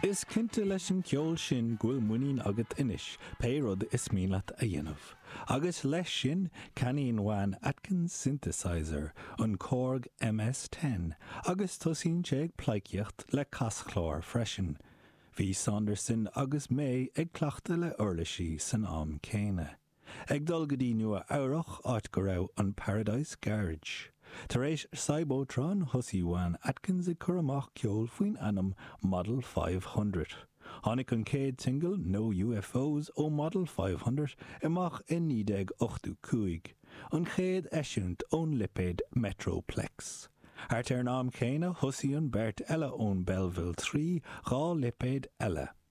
Is cinnte leis an gceol sin go bhfuil muinín agat anois pé rud is mian leat a dhéanamh. Agus leis sin, ceannaíonn Juan Atkins synthesizer, an Korg MS-10, agus tosaíonn sé ag pleidhcíocht le caschlár freisin. Bhí Saunderson agus May ag cleachtadh le uirlisí san am céanna. Ag dul go dtí Nua Eabhrach, áit go raibh an Paradise Garage. Tar éis Cybotron, thosaigh Juan Atkins ag cur amach ceol faoin ainm Model Five Hundred. Tháinig an chéad singil, No UFOs, ó Model Five Hundred amach i 1985, an chéad eisiúint ón lipéad Metroplex. Thart ar an am céanna, thosaigh an beirt eile ón Belleville Three dhá lipéad eile.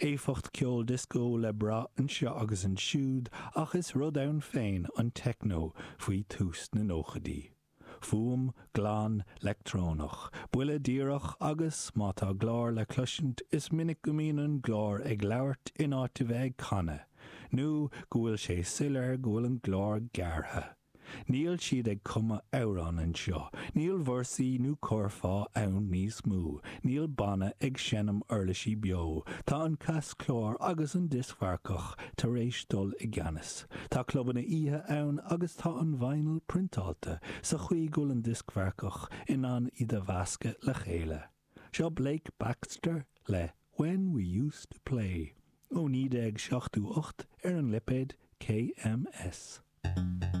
éifeacht ceoil dioscó le brath anseo agus ansiúd ach is rud ann féin an techno faoi thús na nóchaidí. Fuaim glan leictreonach, buille díreach agus, má tá glór le cloisint, is minic go mbíonn an glór ag labhairt in áit a bheith ag canadh, nó go bhfuil sé soiléir go bhfuil an glór gearrtha. Níl siad ag cumadh amhrán anseo, níl véarsaí nó curfá ann níos mó, níl banna ag seinm uirlisí beo, tá an caschlár agus an dioscmharcach tar éis dul i gceannas. Tá clubanna oíche ann agus tá an vinyl priontáilte sa chaoi go bhfuil an dioscmharcach in ann iad a mheascadh le chéile. Seo Blake Baxter le When We Used To Play ó 1978 ar an lipéad KMS.